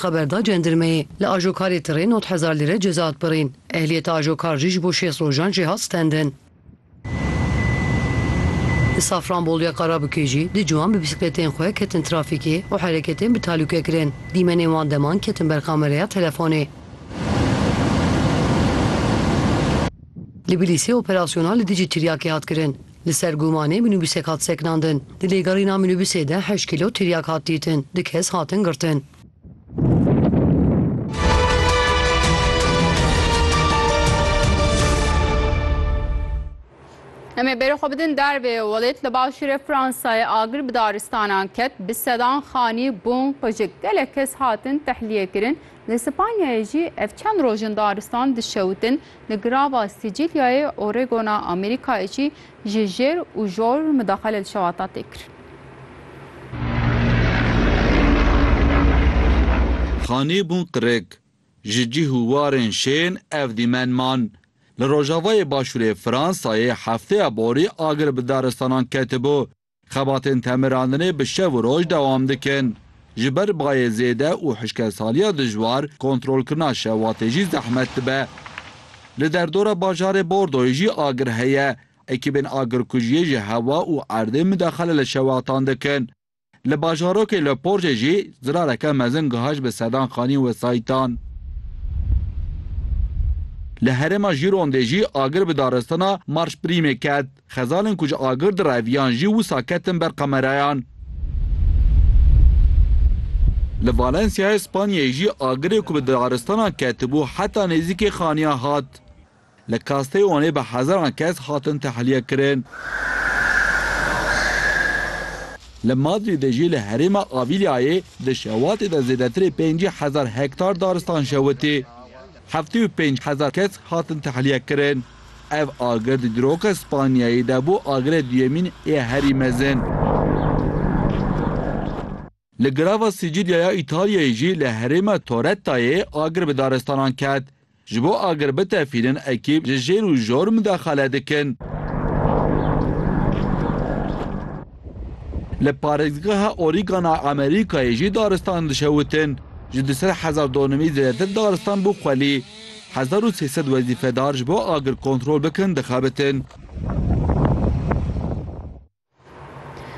Xeber da cendirmeyê. Li ajokarê tirê nod hezar lîre ceza hat birîn. Ehliyeta ajokar jî ji bo şêst rojan jê hat stendin. Li Safranboluya Karabikê jî du ciwan bi bîsikletên xwe ketin trafîkê û hereketên bi talûke kirin. Dîmenên wan deman ketin ber kamereya telefonê. Li Bilîsê operasyona li dijî tiryakê hat kirin. Li ser gumanê minûbûsek hat sekinandin. Di lêgerîna minûbûsê de heşt kîlo tiryak hat dîtin, du kes hatin girtin. Em ê berê xwe bidin dervê welêt li başûrê Fransayê agir bi daristanan ket bi sedan xanî bûn qujik gelek kes hatin tehliyê kirin li Spanyayê jî ev çend rojin daristan dişewitin Li girava Sîcîlyayê Oregona Amerîkayê jî ji jêr û jor midaxele li şewata tê kir. Xanî bûn qirik. Ji cîh û warên şên ev dîmen man. Li rojavayê başûrê Fransayê hefteya borî agir bi daristanan ketibû. Xebatên temirandinê bi şev û roj dewam dikin. Ji ber bayê zêde û hişkesaliya dijwar, kontrolkirina şevatê jî zehmet dibe. Li derdora bajarê Bordoyê jî agir heye. Ekîbên agirkujiyê ji hewa û erdê midexele li şewatan dikin. Li bajarokê Le Porjê jî zirareke mezin gihişt bi sedan xanîn wesayîtan. Li herêma Jîrondê jî agir bi daristana Marşprîmê ket. Xezalên ku ji agir direviyan jî wisa ketin ber kamerayan. Li Valensyayê Spanyayê jî agirê ku bi daristanan ketibû heta nêzîkê xaniyan hat. Li Castellonê bi hezaran kes hatin tehlîyekirin. Li Madrîdê jî li herêma Avilyayê di şewatê de zêdetirê pêncî hezar hektar daristan şewitî. Heftê û pênc hezar kes hatin tehlîyekirin. Ev agir di diroka Spanyayê de bû agirê duyemîn yê herî mezin. Li girava Sicilya ya Îtalyayê jî li herêma Torettayê agir bi daristanan ket. Ji bo agir bitefînin ekîb ji jêr û jor mudexele dikin. Li parêzgeha Oregon a Amerîkayê jî daristan dişewitin. Ji du sed hezar donimî zêdetir daristan bû xwelî. Hezar û sê sed wezîfedar ji bo agir kontrol bikin dixebitin.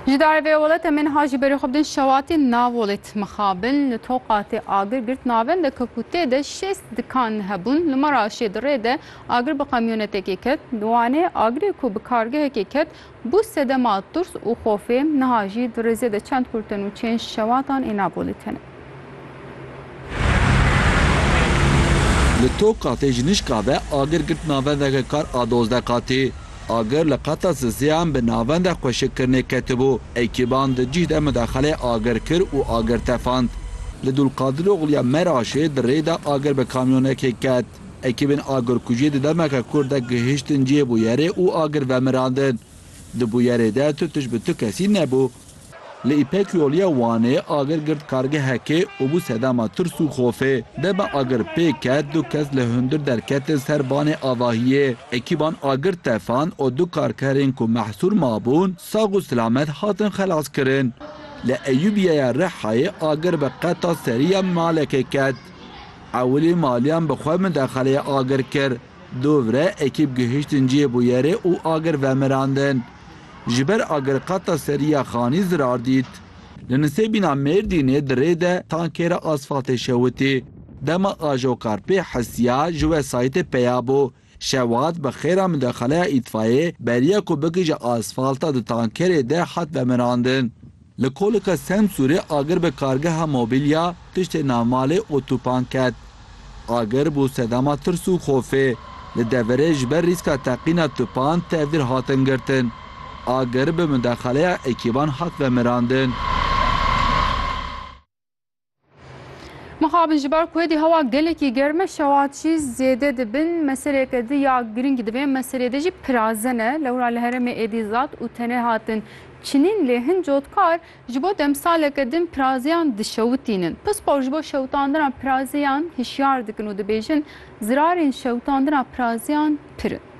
Ji darê vê ola Temên Hajî berê xwe bidin Şewatî Navolêt mixabin li toqa tê agir girt navenda ke ku tê de şêst dikan hebûn li mara şê di rê de agir bi qemyonetekê ket. Di wanê agirê ku bi kargehekê ket Bû sedema tirs û xofê, niha jî di rêzê de çend kurtin û çênj şewatan ê nabolî tene. Li Tokatê ji nişka ve agir girt navendeke kar a dozdeh qatî. Agir li qata siziyan bi navenda xweşikkirinê ketibû. Ekîban di cih de midaxelê agir kir û agir tefand. Li Dulqadiroxluya Meraşê di rê de agir bi kamyonekê ket. Ekîbên agirkujî di demeke kûr de gihiştin cihê bûyerê û agir vemirandin. Di bûyerê de tu tişt bi tu kesî nebû. Li Îpek Yolîya Wanê agir girt kargehekê û bû sedema tirs û xofê. Dema agir pê ket du kes li hundir derketin ser banê avahiyê. Ekîban agir tefand û du karkerên ku mehsûr mabûn sax û silamet hatin xelaskirin. Li Eyûbîyeya Rihayê agir bi qeta serî ya malekê ket. Ewilî maliyan bi xwe min dexeleyê agir kir. Dovre ekîb gihiştin cihê bûyerê û agir vemirandin. Ji ber agir qata serî ya xanî zirar dît. Li Nisêbîna Mêrdînê di rê de tankê re asfaltê şewitî. Dema Ajokarpê hisiya ji wesayîtê peya bû, Şewat bi xêra midexaleya îtfayê beriya ku bikije asfalta di tankerê de hat vemirandin. Li kolika Semsûrê agir bi kargeha mobîlya piştê navmalê Otupan ket. Agir bû sedema tirs û xofê. Li deverê ji ber rîska teqîna tupan tevdîr hatin girtin. Agir bi midexaleya ekîban hat vemirandin. Mixabin ji ber ku êdî hewa gelekî germ e şevat jî zêde dibin meseleke di ya girîng di vê meselê de jî pirazen e lewra li herêmê êdî zat û tenê hatin çinîn lê hin cotkar ji bo demsaleke din pirazeyan dişewitînin pispor ji bo şewitandina pirazeyan hişyar dikin û dibêjin zirarên şewitandina pirazeyan pir in.